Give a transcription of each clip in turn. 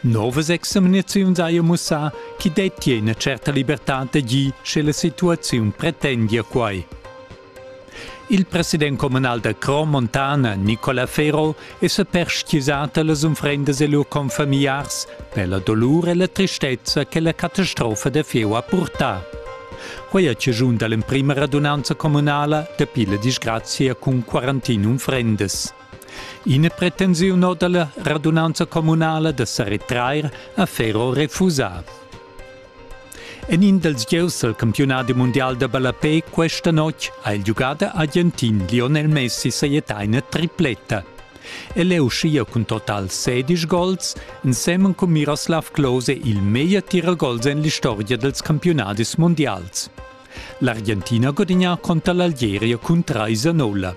Novas examinaziuns haja mussà ch'i dettia ina tscherta libertad da gir, sche la situaziun pretendia quai. Il president communal da Crom Montana, Nicola Ferro, è sa perstgisà da las unfrendas e lur confamigliars per la dolur e la tristezza che la catastrofa da fieu ha purtà. Quai ha chaschun da l'emprima radunanza communala dapi la disgrazia cun quarantun unfrendas. Ina pretensiun da la radunanza communala da sa retrair ha Ferro refusà. En in dals gieus al campiunadi mundial da ballapé questa notg ha il giugader argentin Lionel Messi sajettà ina tripletta. El è uschia cun total 16 gols, ensemen cun Miroslav Klose il meglier tiragols en l'istorgia dals campiunadis mundials. L'Argentina gudigna conter l'Algeria cun 3-0.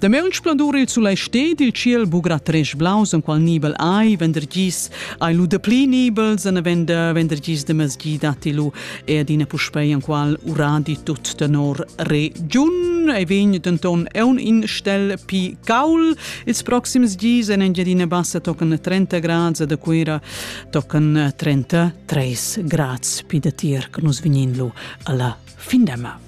Dameunt splendur il sulai sted il ciel bugra tresch blaus en qual nibel ai vendrgis ai lu de pli nibels en vender vendrgis de mesgida ti lu e adina puspei en qual uradi tut tenor re giun e vegn denton eun in stel pi caul ils proxims dis en Engiadina Bassa tocan 30 grads e de Cuira tocan 33 grads pi de tier che nus vegnin lu alla fin demma.